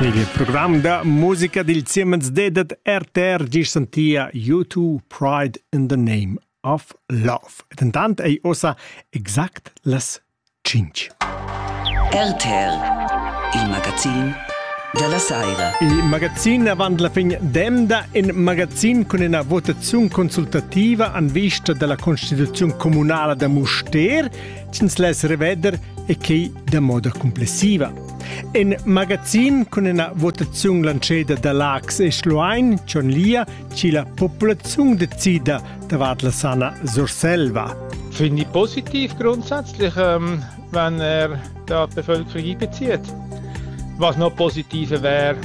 Il program da musica dil Siemens dedet RTR gis sentia U2 Pride in the Name of Love. Et intant ei ossa exact las cinch. RTR, il magazin della Saira. Il magazin avant la fin d'emda in magazin con una votazione consultativa an vista della Costituzione Comunale de Muster sch'ins less reveder e quei da moda complessiva. In magazin cun ina votaziun lanceda da Lax e Schluein John Lia ci la populaziun decida davart la sana Surselva. Finde ich positiv grundsätzlich, ähm, wenn er die Bevölkerung einbezieht. Was noch positiver wäre,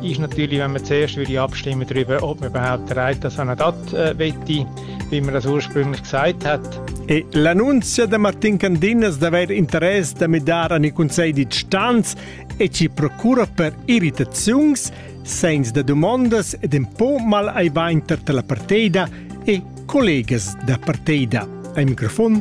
Ist natürlich, wenn man zuerst würde abstimmen darüber, ob man überhaupt bereit das Anadat äh, wette, wie man das ursprünglich gesagt hat. E l'annunzia da Martin Candinas d'aver interess da midar an i Consell di Stanz e ci procura per irritaziuns, sens da domandas ed un po mal ai va inter la partida e collegas da partida. Ai microfon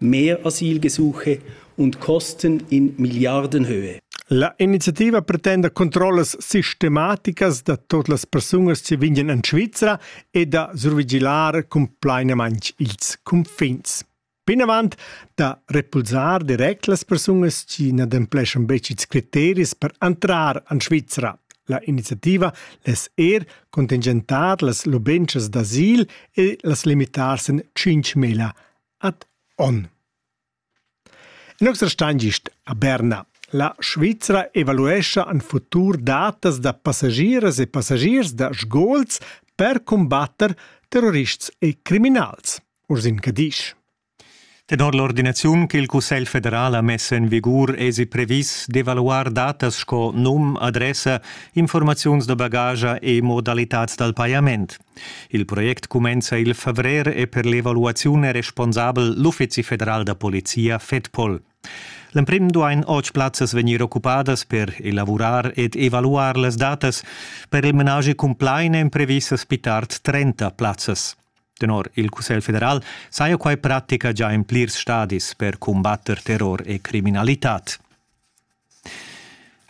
mehr Asylgesuche und Kosten in Milliardenhöhe. La iniziativa pretenda controllas sistematicas da tot las persunas che vegnan en Svizra e da survigilar cumplainaments ils confins. Plinavant da repulsar direct las persunas che n'adempleschan betg ils criteris per entrar en Svizra. La iniziativa les er contingentar las lubentschas d'asil e las limitar sen 5.000 ad onn. In noxer stan gist a Berna. La Svizra evaluescha en futur datas da passagiers e passagiers da sgols per cumbatter terrorists e criminals. Ursin Cadisch. Tenor l'ordinaziun che il Cussegl federal ha mess en vigur esi previs d'evaluar datas sco num, adressa, informaziuns da bagage e modalitads dal pajament. Il project cumenza il favrer e per l'evaluaziun è responsabel l'Uffizi federal da polizia FEDPOL. L'emprim duain otg plazzas vegnir occupadas per elavurar ed evaluar las datas. Per il menage cumplain èn previsas pli tard 30 plazzas. Tenor il Cussegl federal saja quai pratica già in plirs stadis per cumbatter terror e criminalitad.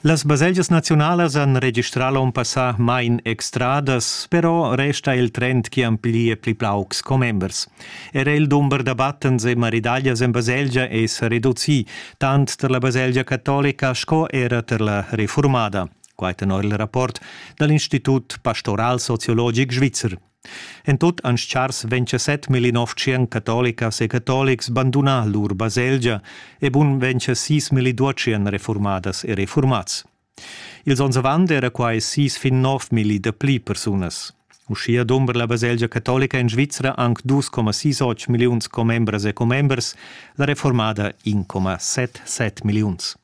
Las baselgias naziunalas han registrà l'onn passà main extradas, però resta il trend chi amplia pli paucs commembers. Era il dumber da battens e maridaglias en baselgia è sa reducì, tant tar la baselgia catolica sco era tar la reformada. Quai tenor il rapport da l'Institut pastoral sociologic svizzer. En tut han schars 27 millinoftschian catolicas e catolics bandunà lur baselgia e bun 26 milliduotschian reformadas e reformats. Ils onns avant era quai sis fin nov milli da pli persunas. Uschia dumbra la baselgia catolica in Svizra anc 2,68 milliuns commembras e commembers, la reformada 1,77 milliuns.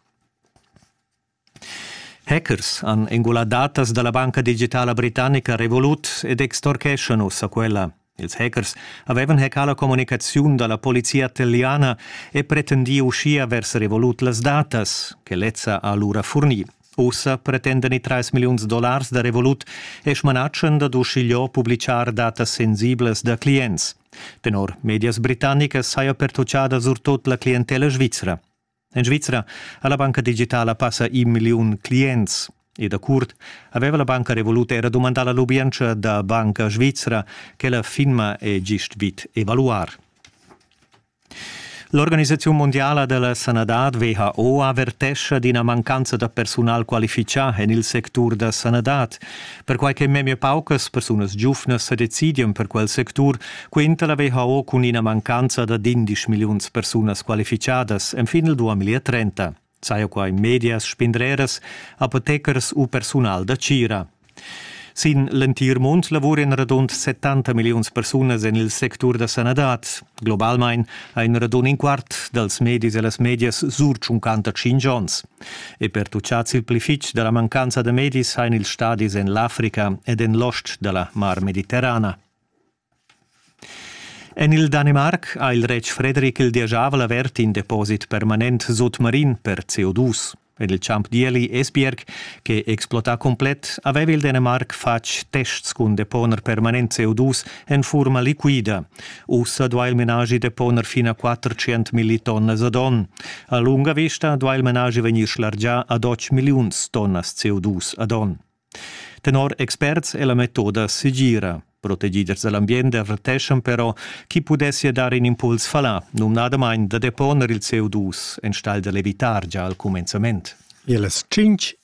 Hackers han engulà datas da la banca digitala britannica Revolut ed extorcheschan ussa quella. Ils hackers avevan hackà la communicaziun da la polizia italiana e pretendì uschia vers Revolut las datas che lezza ha lura furnì. Ussa pretendan i 3 milliuns dollars da Revolut e smanatschan dad uschigliò publitgar datas sensiblas da clients. Tenor medias britannicas saja pertutgada surtut la clientella svizra. En Svizra ha la banca digitala passa in milliun clients. E da curt aveva la banca Revolut era dumandà la lubientscha da Banca Svizra ch'ella firma e gist vid evaluar. L'organisaziun mondiala della sanadad WHO avertescha d'ina mancanza da persunal qualifichà en il sectur da sanadad. perquai che memia paucas persunas giuvnas sa decidian per quel sectur, quenta la WHO cun ina mancanza da 11 milliuns persunas qualificadas enfin il 2030. Saja quai medias, spindreras, apothecers u persunal da tgira. Sin l'entir mund lavuran radund 70 milliuns persunas en il sectur da sanadad. Globalmain ha in radund in quart dals medis e las medias sur 55 onns. E pertuchads il pli fitg da la mancanza da medis hain ils stadis en l'Africa ed en l'ost da la Mar Mediterrana. En il Danimarc ha il retg Fredrik il dieschavel avert in deposit permanent sotmarin per CO2. En il champ d'ieli Esbjerg, che explota complet, aveva il Danimarc fatg tests cun deponer permanent CO2 en furma liquida. Ussa duai il menaschi deponer fin a 400 millitonnas ad onn. A lunga vista duai il menaschi vegnir schlargià ad 8 milliuns tonnas CO2 ad onn. Tenor experts è la metoda segira. Protegids da l'ambient averteschan però chi pudessia dar in impuls fallà, numnadamain da deponer il CO2 enstagl da l'evitar gia al cumenzament. Ils tschintg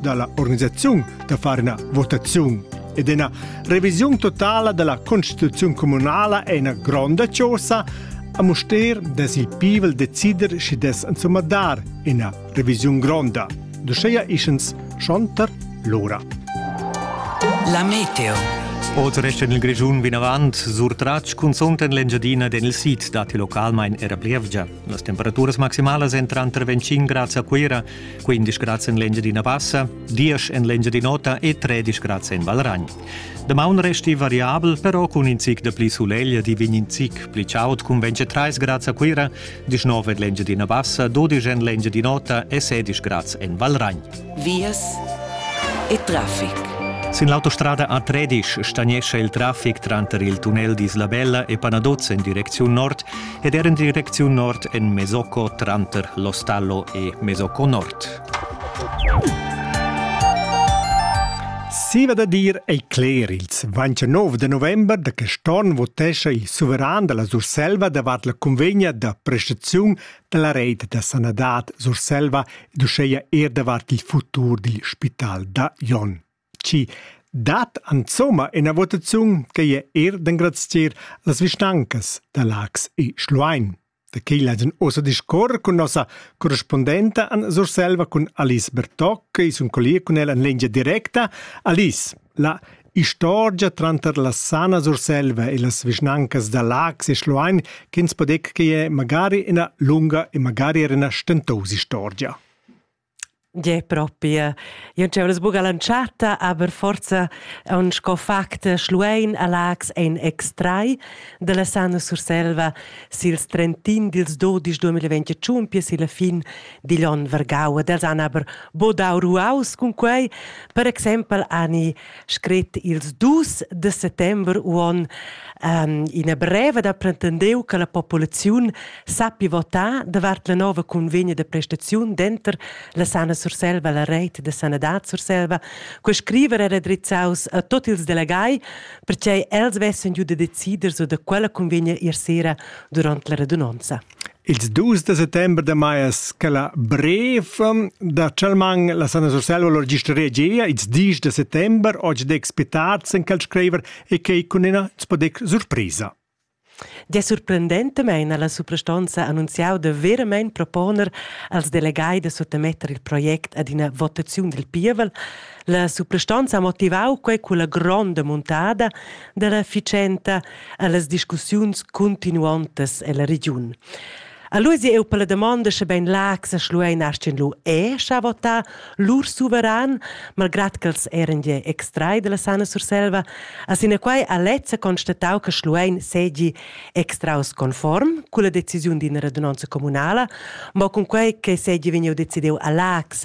dalla organisaziun da far ina votaziun ed ina revisiun totala della constituzione comunala è una gronda cosa a Muster des il pivel decider schi des insomma dar ina revisiun gronda. Duscheia ischens schonter l'ora. La meteo. Oz resta il Grischun vinavant surtratg cunzunt en l'Engiadina den il sid dati localmain era plievgia. Las temperaturas maximalas èn tranter 25 grads a Cuira 15 grads en l'Engiadina Bassa, 10 en l'Engiadin'Ota e 13 grads en Valragn. Damaun resti variabel, però cun in zic de pli suleglia di vegn in zic pli chaud cun 23 grads a Cuira, 19 en l'Engiadina Bassa, 12 en l'Engiadin'Ota e 16 grads en Valragn. Vias e traffic. Sin l'autostrada A13 stagnescha il traffic tranter il tunnel d'Isla Bella e Panaduz en direcziun nord ed er en direcziun nord en Mesocco tranter Lostallo e Mesocco Nord. Siva da dir ei cler ils 29 de november da che Storn votescha il suveran della Surselva davart la convegna da prestaziun della reit da sanadad Surselva ed uscheia er davart il futur dil spital da Jon. Chi dat insomma ina votaziun ch'ei er d'engrazier las vischnancas da Laax e Schluein. Da quei laidan ussa discuorer cun nossa correspondenta Anna Surselva cun Alice Bertoc e sun collier cun ella en lingia directa. Alice, la istorgia tranter la Sana Surselva e las vischnancas da Laax e Schluein ch'ins podec che è magari ina lunga e magari era ina stentos istorgia. Gie, propi. Io dscheu las buca l'entschatta, aber forza on sco fact Schluein a Lax ein extrai dalla Sana Surselva sils 31 dils 12 2021 pia silla fin digl onn vargau. Ed els han aber bodau ruaus cun quei. Per exempel hani scrit ils dus de settember uon um, ina breva da pretendeu che la populaziun sappi votar davart la nova convegna de prestaziun denter la Sana Surselva, la Reit de Sanadad Surselva, co scriver era drizzaus a tot ils delegai, perché els vessen giu de decider su de quella convegna ir sera durant la radunonza. Ils dus da settember da maias che la brev da Chalman la Sana Surselva lur gisteria gia ils dis da settember oggi dec spitats en quel scriver e che cun ina spodec surprisa. Der surprendentamain ha la suprastanza annunziau da veramein proponer als delegai da suttemetter il project ad ina votaziun del pievel. La suprastanza ha motivau quei con la gronda muntada della ficenta allas discussiuns continuontas ella regiun. All'usi eu per la domanda sche bein l'ac sa schluein astin lu e scha vota lur suveran, malgrat ch'els eran je extrai della Sana Surselva, a sinaquai a lezza constatau che schluein segi extraus conform con la decisiun d'ina radunanza comunala, ma con quei che segi vegniu decidiu a l'ax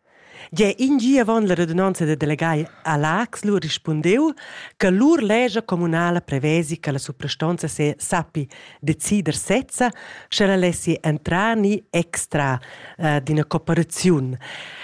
Gia in gi avon la radunonza da delegai a Laax lu rispundeu che lur lescha communala prevesi che la suprastonza se sappi decider sezza, sche la lessi entrar ni extra eh, d'ina cooperaziun.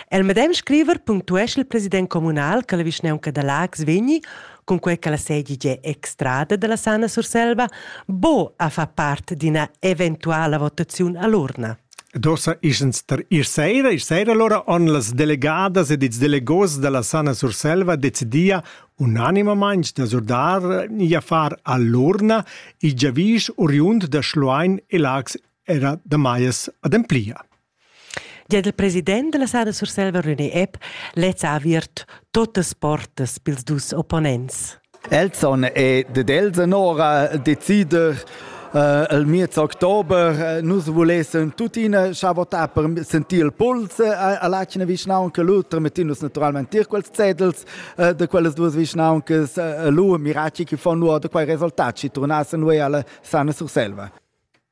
El medem scriver punctuesce il president communal che la vischnaunca da Laax vegni cunquei che la sedi già extrada dalla Sana Surselva bo a fa part d'ina eventuala votaziun all'urna. D'uossa isans tar ir saira. Ir saira alura han las delegadas ed ils delegos da la Sana Surselva decidia unanimamaing da surdar i affar a l'urna il giavüsch oriund da Schluein e Laax era da Maias ademplia. Gia il president della Sana Surselva René Epp lez ha aviert totas portas pils dus opponents. Elson e ded els anora decider Uh, il miez october uh, nus volessen tuttina scha votar per sentir il puls uh, all'acina vischnaunca Luther mettin nus naturalmente tier quels zetels uh, de quelles duas vischnauncas uh, lu miraci chi fon nu da quei resultat ci turnassen noi alla sana Surselva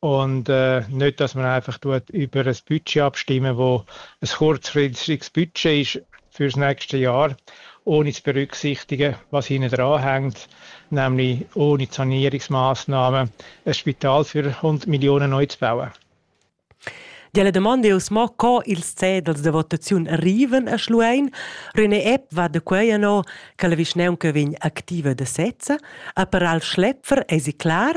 Und äh, nicht, dass man einfach tut, über ein Budget abstimmen, wo ein kurzfristiges Budget ist für das nächste Jahr, ohne zu berücksichtigen, was hinten dran hängt, nämlich ohne Sanierungsmaßnahmen ein Spital für 100 Millionen neu zu bauen. Delle domande us mo co ils cedels de votaziun arriven a Schluein. René Epp va de quei no che la vischneunca vegn activa de sezza, a per al schlepfer esi clar?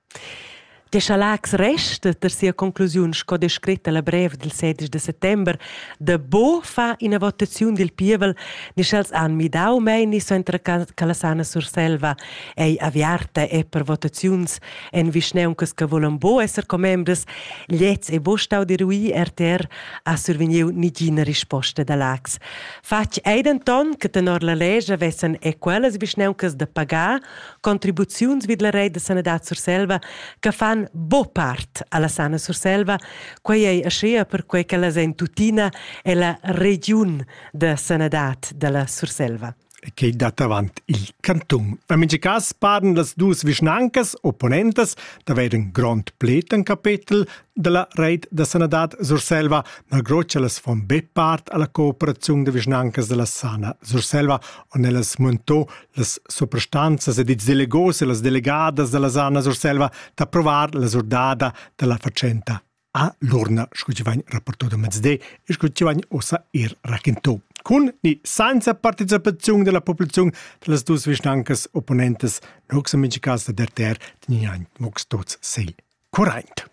Deschalax resta per sia conclusiun sco descret alla brev dil sedisch de settember da bo fa ina votaziun dil pievel ni sch'els han midau meini suenter Calasana Surselva ei aviarta e per votaziuns en vischneuncas che volan bo esser commembres gliez e bo stau dirui RTR ha survegniu nigina risposta da Lax. Fatg ei denton che tenor la lescha vessen e quellas vischneuncas de pagar contribuziuns vid la reit da sanadad Surselva che fan bo part alla sana Surselva, quei ei aschia perquei ch'ellas ein tuttina ella regiun da sanadad dalla Surselva che dat avant il cantun. En mintga cas paran las duas vischnancas opponentas d'avair in grond plet en capetel della reit da sanadad Surselva, malgrod che las fon be part alla cooperaziun de vischnancas della sana Surselva, on ellas montò las suprastanzas ed ils delegos e las delegadas da la Sana Surselva d'approvar la surdada da la fatschenta a l'urna, sco ci vain rapporto da mezde e sco ci vain ossa ir raquinto. Cun ni senza participaziun della populazione da las dus vischnancas opponentes, nox amici cas da DRTR, tiniain mox tots sei. curraint.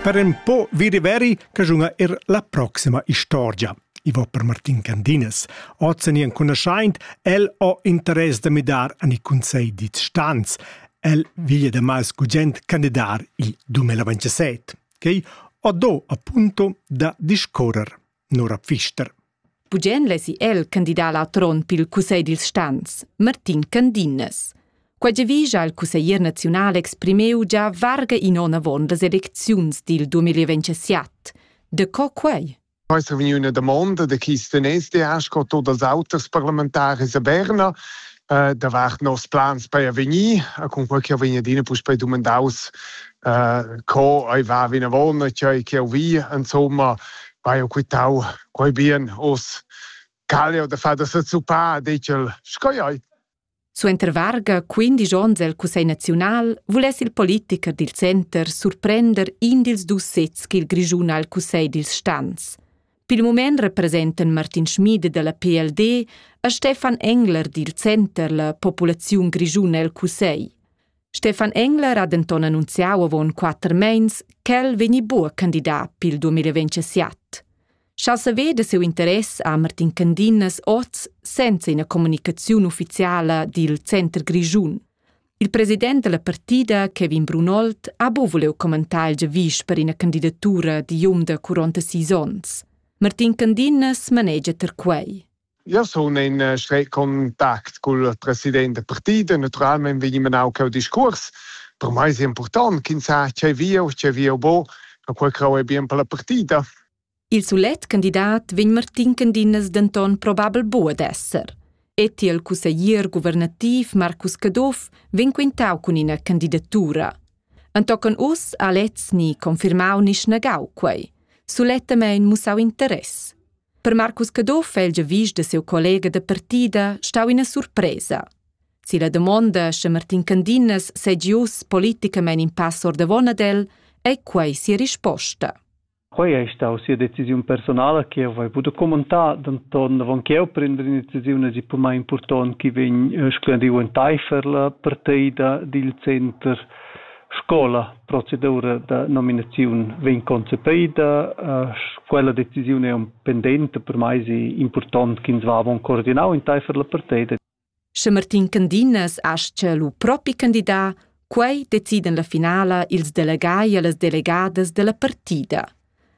Per un po vidi veri che giunga er la proxima istorgia. I va per Martin Candines. Ozen enconuschaint, el ho interess da midar an i consegl dits stans. El viglia da mal scugent candidar il 2027, che ho do appunto da discorrer. Nora Pfister. Bugen lesi el candidar la tron pil cussegl dils stans, Martin Candinnes. Quei giavischa il cusseglier naziunal exprimeu già varga in onn avon las elecziuns dil 2027. De co quei? Poi se vegni üna damonda de chi steness de ascot o dals auters parlamentaris a Berna, äh, davart nos plans per avegnir, a con quel che vegn adina puspei dumandaus äh, co ei va vinavon, tgei che vi, insomma, vai ho quitau quei bien os calio da far da sezuppa, dichel, sco ei. Suenter varga 15 onns el Cussegl naziunal vuless il politicher dil center surprender in dils dus sezs ch'il Grischun ha al Cussegl dils stans. Pil mument representan Martin Schmid dalla PLD e Stefan Engler dil center la populaziun grischuna el cussegl. Stefan Engler ha denton annunziau avon quater meins ch'el vegni buca candidat pil 2027. Sch'el saveda siu interess ha Martin Candinas oz senza ina communicaziun ufficiala dil center grischun. Il president della partida, Kevin Brunold, ha bu vuliu commentar il giavisch per ina candidatura di um da 46 onns. Martin Candinnas manegia ter quei. Ja sun in uh, streit contact cul president da partida. Naturalmente vegni menau quel discurs. Per mai è importante, chi sa, c'è via o c'è via bo, a quel crau è bien per la partida. Il sulet candidat vegn Martin Candinas denton probabel buca d'esser. E tiel cusseglier guvernativ Marcus Caduff vegn quintau cun ina candidatura. Entochen uss ha lez ni confirmau ni snagau quei. Sulettamein mussau interess. Per Marcus Caduff è il giavisch da siu collega da partida stau ina surpresa. Si la domonda sche Martin Candinas segi uss politicamein in pass ordavon ad el, ei quei sia risposta. Quei ei stau sia decisiun personala che jeu vai buca commentar, denton avon ch'jeu prender ina decisiun hagi per mei impurtont ch'i vegn splendiu enteifer la parteida dil center scola. Procedura da nominaziun vegn concepeida. Quella decisiun ei pendenta, per mei si impurtont ch'ins va avon coordinau enteifer la parteida. Sche Martin Candinas astga lu propi candidar, quei decidan la finala ils delegai e las delegadas dalla partida.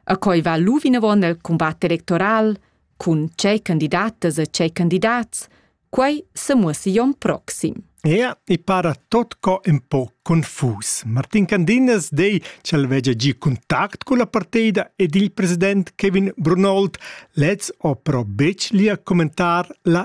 A quei va lu vinavon el combat electoral cun tgei candidatas e tgei candidats, quei semuossi jon proxim. Ja, i para tot co un po confus. Martin Candinas dei ch'el vegia gi contact con la partida ed il president Kevin Brunold lez opro bec lia commentar la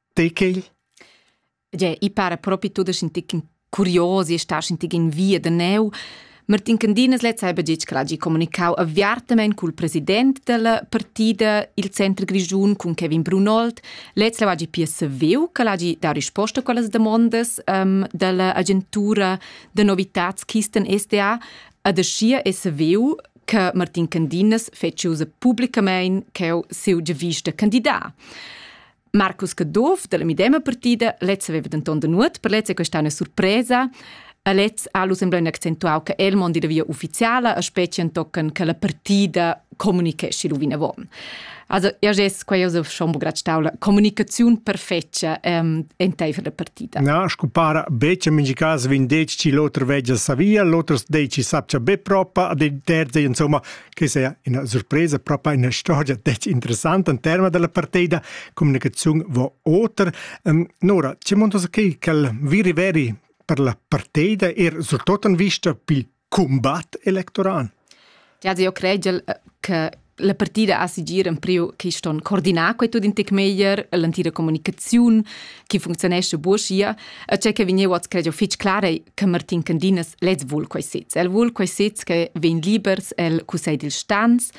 Tei quegl? Gie, i para propi tut a sentir ch'in curiosi e sta a sentir in via da neu. Martin Candinas lez ha gitg che l'hagi communicau aviartamein cul president della partida il Center Grischun cun Kevin Brunold. Lez leu hagi pia saviu che l'hagi dau risposta a quellas damondas um, dalla agentura da novitats Kisten SDA ed aschia è saviu che Martin Candinas feci usa publicamein cheu siu giavista candidat. Marcus Caduff della medema partida, lezza aveva denton da nuot, per lezza è questa una surpresa. A lez ha Lusenblein accentuau che el mondi da via ufficiala, a specie tocken che la partida comunicesci lu vinavon. Also, ja ges, qua io schon bograd staula, comunicaziun perfetga ähm, enteifer la partida. Na, scu para, beccia in cas vin deci l'oter veggia sa via, l'oter deci sapcia be propa, ad il terza, insomma, che sia ina surpresa proprio ina storia detg interessanta in terma della partida comunicazione va oter um, Nora ci montas che quel viri veri per la partida er surtutto in vista pi combat electoral Ja, io credo che la partida ha sigir in priu che ston coordinar quei tut in tec meglier l'antira comunicazione che funzionesce buoschia e c'è che vegnevo a credo fitch clare che Martin Candinas lez vul quei sez. El vul quei sez che vegn libers el Cussegl dil Stans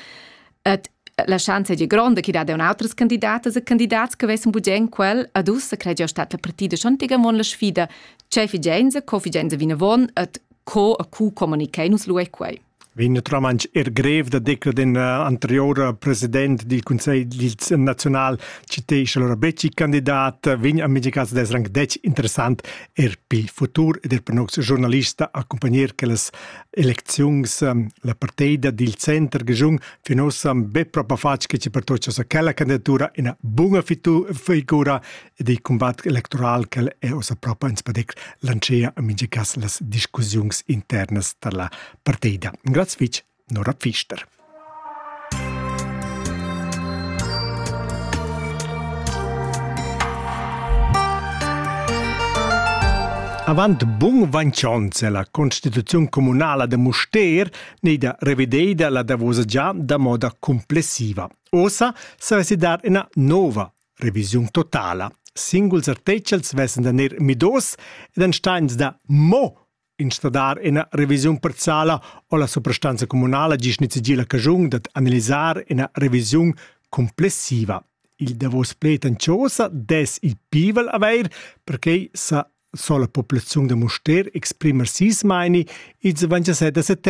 et la schanza di gronda che dat un outras candidatas e candidats che vessen bugen quel ad ussa cregia stat la partida Chantigamon la sfida ce figenza co figenza vinavon et co a cu comunicai nus lu ei quei vegn naturalmein er grev da declarar in anterior president dil conselg naziunal citescha allora betg candidat vegn a mintga caso d'esser anche detg interessant er pi futur ed er per nox journalista accompagner che las elecziuns la parteida dil center giun fin ossa be propa fatg che ci pertoccia sa quella candidatura ina bunga figura ed il cumbat electoral ch'el è ussa propa ins padec lantschea en mintga cas las discussiuns internas da la partida. Grazie fitg, Nora Pfister. Avant bun vancions è la constituziun comunala de Muster neida revideida la davosa già da moda complessiva. Osa sa dar ina nova Revisiun totala. Singuls artechels vessen da ner midos ed ein steins da mo instradar ina revisiun parziala o la suprastanza communala gis nizegir la cagiun dad analisar ina revisiun complessiva. Il davos pled en chosa des il pivel aveir perché sa sola populaziun da Muster exprimer sis maini ils 27 da settembre